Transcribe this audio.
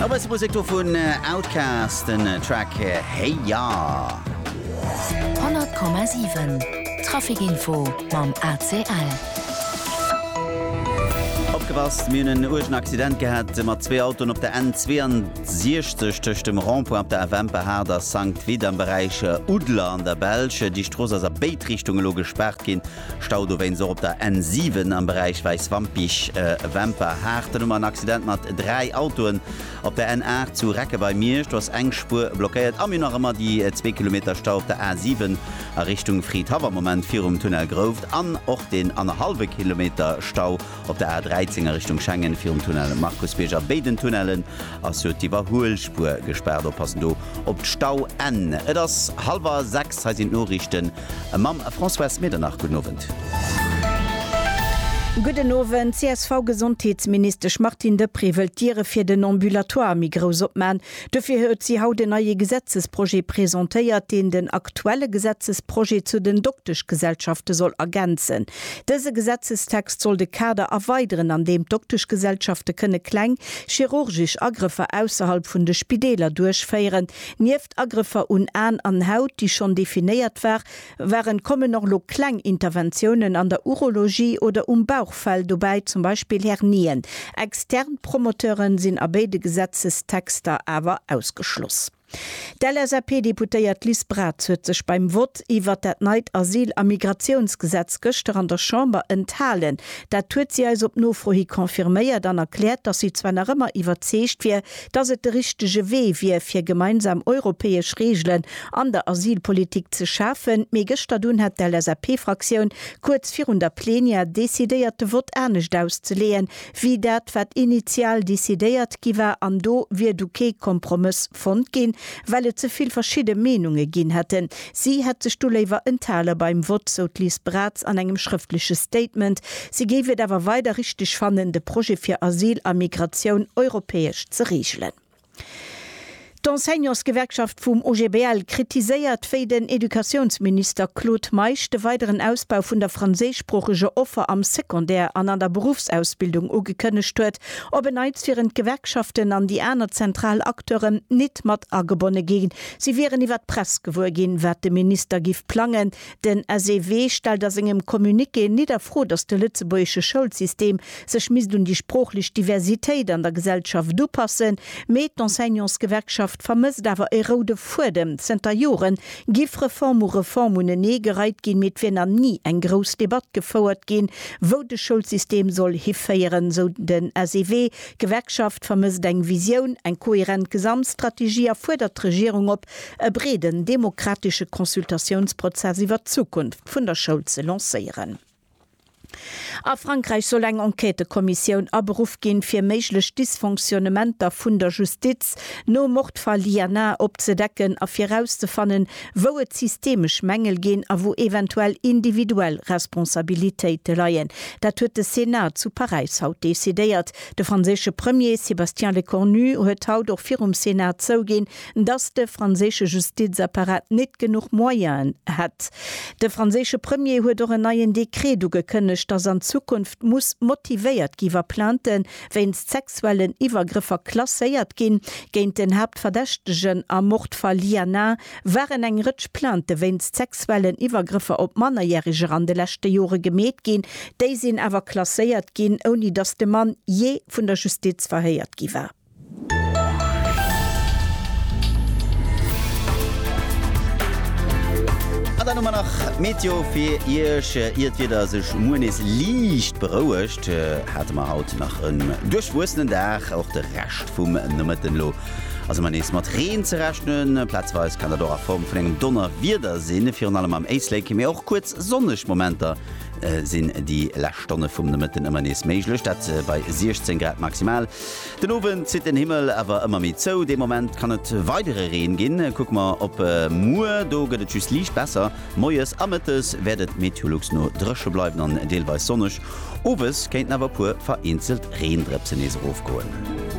E bësse Musek do vun Outkast, den Track Hey Ya. 100,7 Traficinfo mam ACL. Opgepasst, mir hunn en uergen Accident gehat mat zwee Autoen op der N62 tëscht dem Rond-point op der FM Pahaard a Sankt Vith am Beräich Oudler an der Belsch. Déi Strooss ass a béid Richtung elo gespaart ginn. Stau dowéinst och op der N7 am Beräich Wäiswampich, Wemper. Haarten um an Accident mat 3 Autoen. Op der N8 zu Recke bei Miersch, do ass eng Spuer blockéiert. A mir hu nach ëmmer déi zwee Kilometer Stau op der A7 a Richtung Fridhaff am Moment virum Tunnel Grouft an och deen annerhallwe Kilometer Stau op der A13 a Richtung Schengen virum Tunnel Markusbierg. A béiden Tunnellen ass jo d'Iwwerhuelspuer gespaart. Oppassen do op d'Stauenn. Et ass hallwer 6, hei sinn d'Noriichten Mam Françoise Medernach, gudden Owend. Gudden Owend. D'CSV-Gesondheetsministesch Martine Deprez wëllt d'Diere fir den Ambulatoire méi grouss opman. Dofir huet si haut en neie Gesetzesprojet presentéiert, deen den aktuelle Gesetzesprojet zu den Dokteschgesellschafte soll ergänzen. Dëse Gesetzestext soll de Kader erweideren, an deem d'Dokteschgesellschafte kënne kleng chirurgesch Agrëffer ausserhalb vun de Spideeler duerchféieren. Agrëffer un An an Haut, déi schonn definéiert war, waren, kommen och elo kleng Interventiounen an der Urologie oder um Bauchfell dobäi, zum Beispill Hernien. Extern Promoteure sinn a béide Gesetzestexter awer ausgeschloss. D'LSAP-Deputéiert Liz Braz huet sech beim Vott iwwert dat neit Asyl a Migratiounsgesetz gëschter an der Chamber enthalen. Dat huet si eis op Nofro hi confirméiert an erkläert, datt si zwar nach ëmmer iwwerzeegt wier, dass et de richtege Wee wier, fir gemeinsam europäesch Reegelen an der Asylpolitik ze schafen, mee gëschter dunn hat d'LSAP-Fraktioun kuerz virun der Plenière decidéiert, de Vott anescht auszeleeën, wéi dat, wat initial decidéiert gi war. An do wier du kee Kompromëss fonnt ginn, well et ze vill verschidde Meenunge ginn hätten, Si hätt sech do léiwer enthale beim Vott, sou d'Liz Braz an engem schrëftleche Statement. Si géif et awer weider richteg fannen, de Projet fir Asyl a Migratioun europäesch ze reegelen. D'Enseignantsgewerkschaft vum OGBL kritiséiert, wéi den Educatiounsminister Claude Meisch de weideren Ausbau vun der franséischsproocheger Offer am Secondaire an an der Beruffsausbildung ugekënnegt huet. Op en Neits wieren d'Gewerkschaften an déi aner zentral Acteuren nit mat agebonne gi Si wieren iwwer d'Press gewuer ginn, wat de Minister giff plangen. Den SEW stellt a sengem Communiqué nit a Fro, datt de lëtzebuergesche Schoulsystem sech misst un déi sproochlech Diversitéit an der Gesellschaft upassen, mee d'Enseignantsgewerkschaft vermësst awer e roude Fuedem. Zënter Jore giff Reform u Reform unenee gereit ginn, mee et wier nach ni eng grouss Debatt gefouert ginn, wou de Schoulsystem soll hiféieren, sou den SEW. D'Gewerkschaft vermësst eng Visioun, eng kohärent Gesamtstrategie a fuerdert d'Regierung op, e breeden demokratesche Consultatiounsprozess iwwert d'Zukunft vun der Schoul ze lancéieren. A Frankräich soll eng Enquêtëkommissioun aberuff ginn, fir méiglech Dysfonctionnementer vun der Justiz nom Mordfall Lienard opzedecken a virauszefannen, wou et systemesch Mängel ginn a wou eventuell individuell Responsabilitéite leien. Dat huet de Senat zu Paräis haut decidéiert. De franséische Premier Sébastien Lecornu huet haut och virum Senat zouginn, datt de franséische Justizapparat net genuch Moyenen hätt. De franséische Premier huet och en neien Dekret ugekënnegt, datt an Zukunft muss motivéiert gi wa Plainten wéinst sexuellen Iwwergrëffer klasséiert ginn. Géint den Haaptverdächtegen am Mord Fall Liana waren eng Rëtsch Plaintë wéinst sexuellen Iwwergrëffer op Mannerjäreger an de leschte Jore gemeet ginn. Déi sinn awer klasséiert ginn, ouni datt de Mann jee vun der Justiz verhéiert gi war. An dann hu mer nach d'Meteo fir Iech. Ier d'Wieder sech muer nees liicht berouegt, hate mer haut nach en duerchwuessenen Dag. Och de Rescht vum Nomëtten elo ass ëmmer nees mat Reen ze rechnen. Plazweis kann dat och a Form vun engem Donnerwieder sinn, virun allem am Éislek. Mee och kuerz sonneg Momenter sinn déi lescht Stonne vum Nomëtten ëmmer nees méiglech, dat bei 16 Grad maximal. Den Owend zitt den Himmel awer ëmmer méi zou, dee Moment kann et weidere Reen ginn. Kucke mer op muer, do gëtt et just liicht besser. Moies a Mëttes wäert et Meteolux no dréche bleiwen an deelweis sonneg, owes kéinten awer e puer vereenzelt Reendrëpse nees erofgoen.